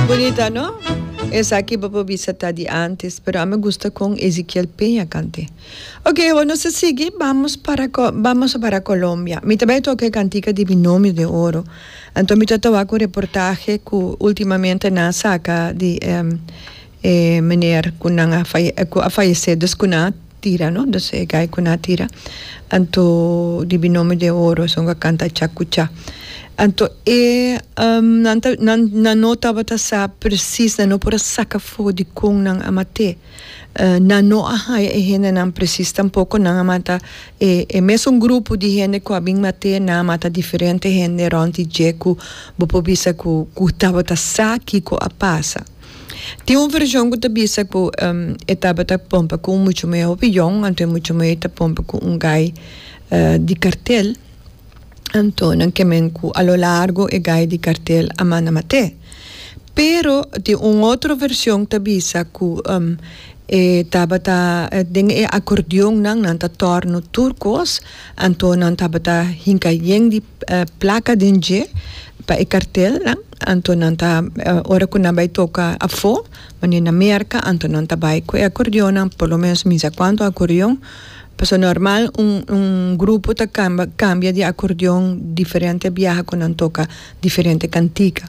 Bunita no? Esaki bo por bisa ta di antes, pero ami gusta con Ezequiel Peña cante. Ok, awor nos a sigui, bamos para co, bamos a para Colombia. Mi ta bay toca e cantica di Binomio de Oro. Anto mi ta tawa cu reportahe cu ultimamente nan a saca di, ehm, e meneer cu nan a cu a fayece dus cu nan a tira no dus e guy cu nan a tira anto di binomi de oro esnan a canta cha cu cha anto e nan ta nan nan no tabata sa precies nan no por a saca fogo di con nan a mate nan no a haya e hendenan precies tampoco nan a mata e e mesun grupo di hende cu a bin mate nan a mata diferente hende rond di dje cu bo por bisa cu cu tabata sa kico a pasa. Tin un version cu ta bisa cu e tabata pompa cu un mucha muhé hopi jong, anto e mucha muhé ta pompa cu un guy di cartel, anto nan kemen cu a lo largo e guy di cartel a manda mat'é. Pero tin un otro version ta bisa cu e tabata den e acordeonnan nan ta torno tur cos, anto nan tabata hinca yen di. placa den dje pa e cartel nan anto nan ta ora cu nan bay toca afo mane na merca anto nan ta bay cu e acordeon nan por lo menos mi sa cuanto acordeon pasobra normal un un grupo ta camba cambia di acordeon diferente biaha cu nan toca diferente cantica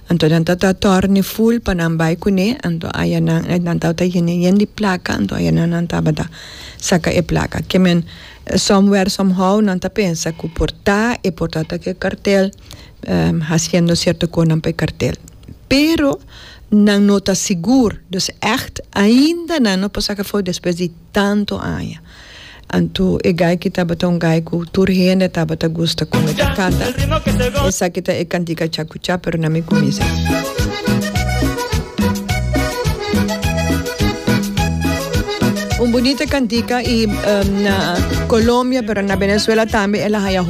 anto nan ta torne full pa nan bay cune anto aya nan nan tabata yende yende placa anto aya nan nan tabata saca e placa ke men Somewhere somehow nan ta pensa cu por ta e por ta ta e cartel haciendo cierto conan pa e cartel pero nan no ta sigur dus echt ainda nan no por saca fo'i despues di tanto aña anto e gayki tabata un gay cu tur hende tabata gusta con e ta canta esaki ta e cantica cha. Scucha pero na mi cuminsa. Un bunita cantica y na Colombia pero na Venezuela tambe el a haya.